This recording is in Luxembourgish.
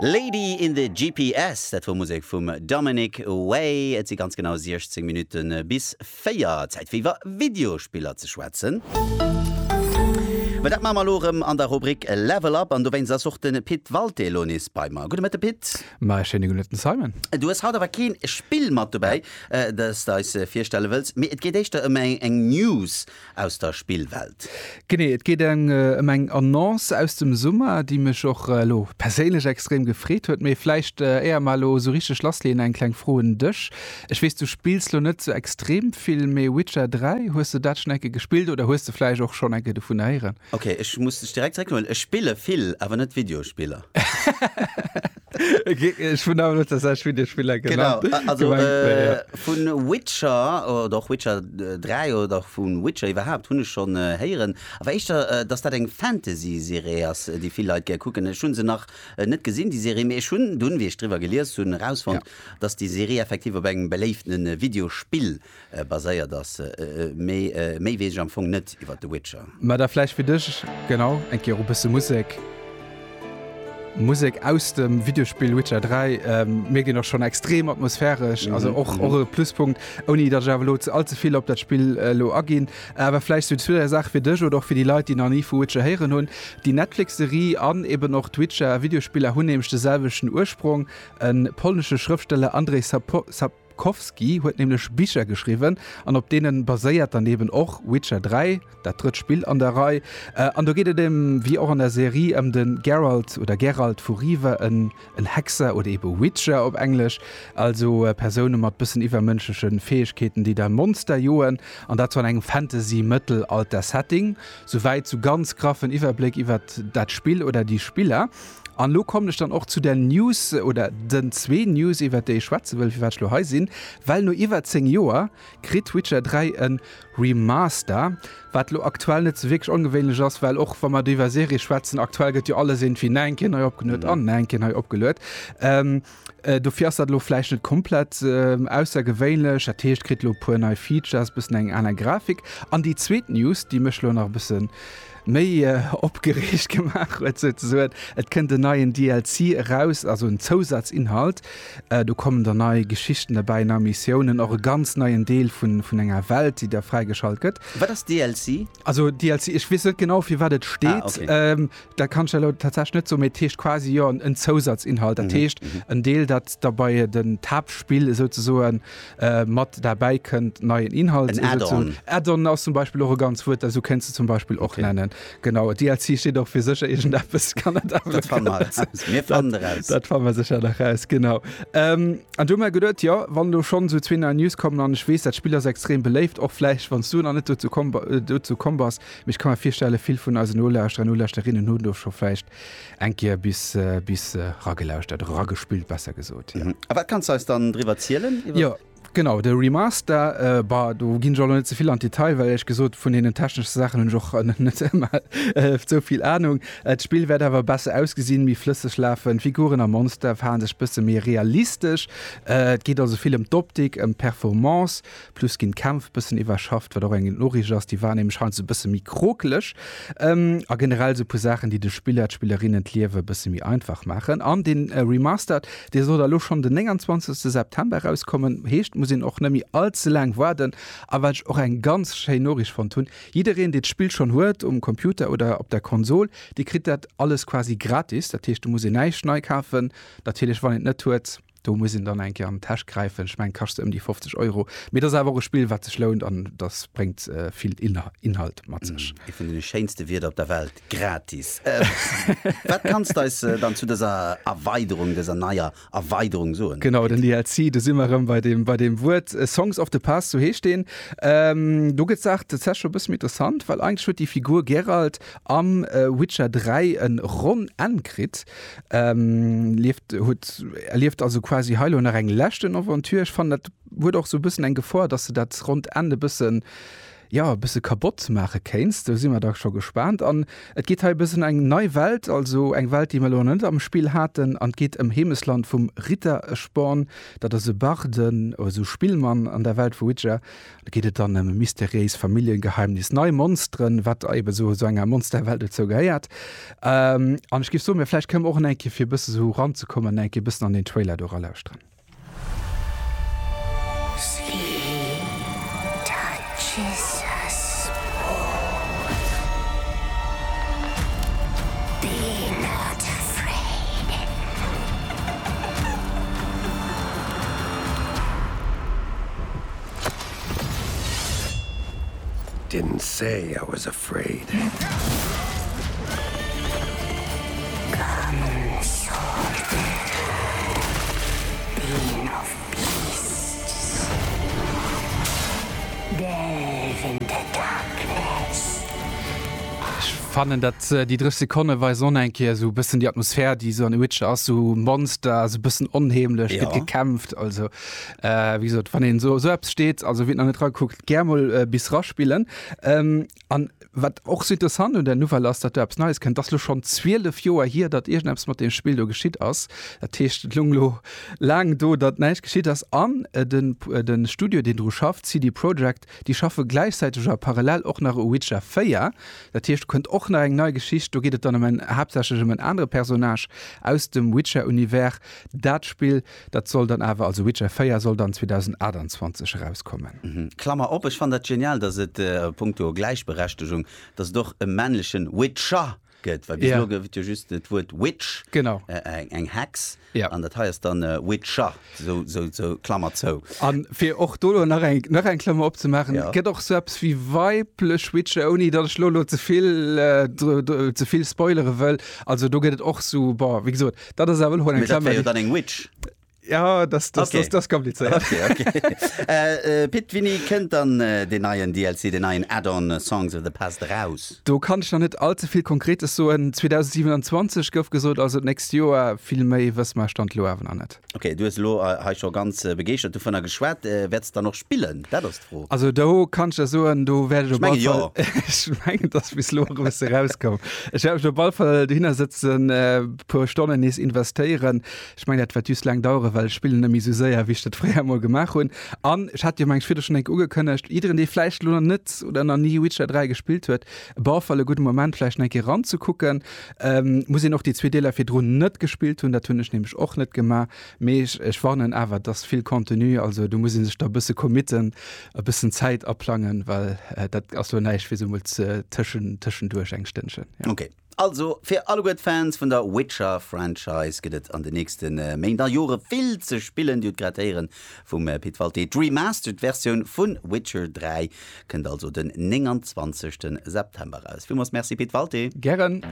Lady in the GPS, dat wor Musek vum Dominic Way. Et si ganz genau 16 Minutte bis 4. Zäit fir iwwer Videospiller ze schwätzen. Mä dat maache mer elo erëm an der Rubrik Level Up an dowéinst ass och de Pit Walté elo nees bei mer. Gudde Mëtte Pit. Mä e schéine gudde Mëtten Simon. Du hues haut awer keen Spill mat dobäi, dat s de eis virstelle wëlls, mee et geet éischter ëm eng News. aus der Spillwelt. Genee, et geet ëm eng Annonce aus dem Summer, déi mech och elo perséinlech extrem gefreet huet. Mee vläicht éier mer elo esou richteg lassleeën, eng kleng Fro un dech. Ech weess, du spills lo net esou extrem vill, mee Witcher 3, hues de dat schonn eng Kéier gespillt oder hues de vläicht och schonn eng Kéier dovun héieren? Ok, ech muss dech direkt zréck huelen, ech spille vill, awer net Videospiller. Ech hunn awer net dat selwecht Videospiller gemengt. Genau, also vu Witcher oder och Witcher 3 oder och vu Witcher iwwerhaapt hunn ech schonn héieren, awer éischter, datt dat eng Fantasy-Serie ass, déi vill Leit gär kucken. Ech hunn se nach net gesinn, déi Serie, mee ech hunn dunn, wéi ech driwwer gelies hunn, erausfonnt, datt déi Serie effektiv op engem beléiftene Videospill Baséiert ass. Mee méi weess ech am Fong net iwwer The Witcher. Mä da vläicht fir dech, genau, eng Kéier och e bësse Musek. Musek aus dem Videospill Witcher 3. Mir ginn och schonn extrem atmosphäresch, also och och e Pluspunkt, ouni datt ech awer elo ze all ze vill op dat Spill elo aginn. Awer vläicht sou zu der Saach fir dech oder och fir déi Leit, déi nach ni vu Witcher héieren hunn, Déi Netflix-Serie an eben och d'Witcher-Videospiller hunn nämlech de selwechten Ursprong, E polnesche Schrëftsteller, Andrzej Sapkowski, Bukowski huet nämlech Bicher geschriwwen an op deene baséiert dann eben och Witcher 3, dat drëtt Spill an der Rei. An do geet et ëm, wéi och an der Serie, ëm de Geralt oder Geralt vu Riva, en Hexer oder ebe Witcher op Englesch, also Persoune mat bëssen iwwermënschleche Fäegkeeten, déi da Monster joen, an dat an engem Fantasy-Mëttelalter-Setting. Souwäit zu ganz graffen Iwwerbléck iwwert dat Spill oder déi Spiller. An elo kommen ech dann och zu der News oder den zwee News, iwwert déi ech schwätze wëll, firwat ech elo hei sinn. Well no iwwer 10 Joer kritt Witcher 3 e Remaster, wat elo aktuell net sou wierklech ongewéinlech ass, well och wa mer do iwwer Serie schwätzen, aktuell gëtt jo alles iergendwéi nach eng Kéier nei opgeluet an nach eng Kéier nei opgeluet. Äh, dofir ass dat lo vläicht net komplett äh, aussergewéinlech. Dat heescht, kritt lo puer nei Features, bëssen eng aner Grafik. An déi zweet News, déi mech lo nach bëssen méi äh, opgereegt gemaach huet, sou ze soen, et kënnt en neien DLC eraus, also en Zousatzinhalt. Äh, do kommen der nei Geschichten derbäi, nei Missiounen, och e ganz neien Deel vun, vun enger Welt, déi der fräigeschalt gëtt. Wat ass DLC? Also DLC, ech weess net genau, fir wat et steet. Ah, okay. Ähm, Dat kann ech der elo tatsächlech net soen, mee et heescht quasi jo en Zousatzinhalt. Dat heescht, en Deel, dat da bei den d'Haaptspill esouzesoen mat derbäi kënnt, neien Inhalt. En Add-on. Add-on ass zum Beispill och e ganz Wuert, dat esou kéints de zum Beispill och nennen. Okay. Genau. DLC steet och fir sécher iergendeppes. Dat fanne mer eraus. Mir fannen eraus. Dat fanne mer sécher nach eraus, genau. An du hu mer geduet, jo, wann elo schonn esou zwee nei News kommen, an ech weess, dat Spill ass extrem beléift, och vläicht wann s du nach net dozou komm, dozou komm bass, Mee ech ka mer virstellen, vill vun eisen Nolauschterer an Nolauschterinnen hunn do scho vläicht eng Kéier bis, bis eragelauschert, oder eragespillt besser gesot, jo. A wat kanns de eis dann driwwer zielen, iwwer. Jo, genau, de Remaster, bah, do ginn ech och nach net ze vill an d'Detail, well éierlech gesot vun deenen techneschen Saachen hunn ech och nach net ëmmer esou vill Anung. D'Spill wäert awer besser ausgesinn, méi flësseg lafen, d'Figuren a Monster verhale sech e bësse méi realistesch. Et geet also vill ëm d'Optik, ëm d'Performance, Plus ginn d'Kämpf bëssen iwwerschafft, wat och eng gutt Noriicht ass. Déi waren nämlech heiansdo e bësse méi krokeleg. A generell esou e puer Saachen, déi de Spiller, d'Spillerinnen d'Liewe e bësse méi einfach maachen. An dee Remastered, dee soll da elo schonn den 29 September erauskommen. Heescht, et muss een och net méi all ze laang waarden. A wat ech och eng ganz schéin Noriicht fonnt hunn, Jiddereen, dee d'Spill schonn huet, um Computer oder op der Konsol, dee kritt dat alles quasi gratis. Dat heescht, do muss een näischt nei kafen. Natierlech, wann een et net huet. Do muss een dann eng Kéier an d'Täsch gräifen. Ech mengen, kascht se ëm déi 50 Euro. Mee et ass awer och e Spill, wat sech lount an dat bréngt vill Inhalt mat sech. Eent vun deene schéinste Wierder op der Welt, gratis! Wat kanns de eis dann zu dëser Erweiderung, dëser neier Erweiderung soen? Genau, den DLC, do si mer erëm bei deem Wuert. Songs of the Past, sou heescht deen. Do gëtt d'Saach tatsächlech scho e bësse méi interessant, well eigentlech huet déi Figur Geralt am Witcher 3 e ronn Enn kritt, lieft huet erlieft also quasi hei lo nach eng leschten Aventure. Ech fannen dat huet och sou bëssen eng Gefor, dass de dat ronnt Enn e bëssen jo e bësse kabott maache kéints. Do si mer da scho gespaant. An et geet hei e bëssen eng nei Welt, also eng Welt déi mer lo nach net am Spill haten, an et geet ëm Heemesland vum Ritteresporn, dat ass e Barde, also Spillmann an der Welt vu Witcher, Da geet et dann ëm e mysteriéist Familljengeheimnis, nei Monsteren, wat eben esou esou enger Monsterwelt dozou gehéiert. Ähm, an ech géif soen, mir vläicht kënnen mer och en eng Kéier, fir e bësse esou ranzekommen, en eng Kéier e bëssen an den Trailer do eralauschteren. Didn't say I was afraid. Ech fannen dat déi 3 Sekonne weisen och nach eng Kéier esou e bëssen déi Atmosphär déi esou an The Witcher ass, esou Monster, esou e bëssen onheemlech, gëtt gekämpft, also. Äh, wéi gesot, wann een esou esou eppes steet, also wien nach net ragekuckt, gär mol bis raspillen. Ähm, an wat och esou interessant un der Nouvelle ass, datt do eppes Neies kënnt, dat ass elo schonn 12 Joer hier, datt iergendeppes mat deem Spill do geschitt ass. Dat heescht, et lung elo laang do, datt näischt geschitt ass. An den de Studio, deen dru schafft, CD Projekt, déi schaffe gläichzäiteg a parallel och nach u Witcher 4. Dat heescht, do kënnt och nach eng nei Geschicht. Do geet et dann ëm en, haaptsächlech ëm en anere Personnage aus dem Witcher-Univers. Dat Spill. Dat soll dann awer, also Witcher 4 soll dann 2028 erauskommen. Klammer op, Ech fannen dat genial, dass et a punkto Gläichberechtegung, dass et och e männlechen Witcher gëtt, well bis elo gouf et jo just dat Wuert Witch, eng Hex, an dat hei ass dann Witcher, sou Klammer zou. A fir och do elo nach eng nach eng Klammer opzemaachen, Et gëtt och sou eppes wéi weiblech Witcher, ouni datt ech elo elo ze vill ze vill spoilere wëll. Also do gëtt et och sou, bon, wéi gesot, Dat ass awer hol eng Klammer. Jo dann eng Witch. Ja das, das, okay. das, das kompliziert. Okay, okay. äh, äh, Pit Winni kënnt dann äh, den neien DLC den neien Add-on äh, Songs of the Past raus. Do kann ich noch net allze viel konkretes so en 2027 gouf gesot also nächst Joer vill méi wëss mar stand lo awer an net. Okay du lo ha äh, schon ganz äh, begeert du vun der geschwert äh, werdst dann noch spillen. Fro. Also do kann ech der soen, do wäert ech op alle Fall. Ech mengen, dass bis lo e bësse rauskoum. Ech wäert mech do op alle Fall dohinner sëtzen, e puer Stonnen nees investéieren. Ech mengen, dat wäert just laang daueren, well ech spillen net méi esou séier, wéi ech dat fréier emol gemaach hunn. An ech hat jo, meng ech, virdru schonn eng Kéier ugekënnegt, jiddereen, dee vläicht elo nach net oder nach ni Witcher 3 gespillt huet, op alle Fall e gudde Moment, vläicht nach eng Kéier eranzekucken. Muss een och déi zwee Deeler virdrun net gespillt hunn, dat hunn ech nämlech och net gemaach, Mee ech warnen awer, et ass vill Contenu, also do muss ee sech da e bësse committen, e bëssen Zäit aplangen, well dat ass lo näischt fir esou emol tëschenduerch eng Stënnchen. Ok, also fir alleguer d'Fans vun der Witcher-Franchise gëtt et an den nächste Méint a Jore vill ze spillen. Dir hutt grad héieren vum Pit Walté, d'Remastered Versioun vu Witcher 3 kënnt also den 29 September raus. Villmools Merci Pit Walté. Gären.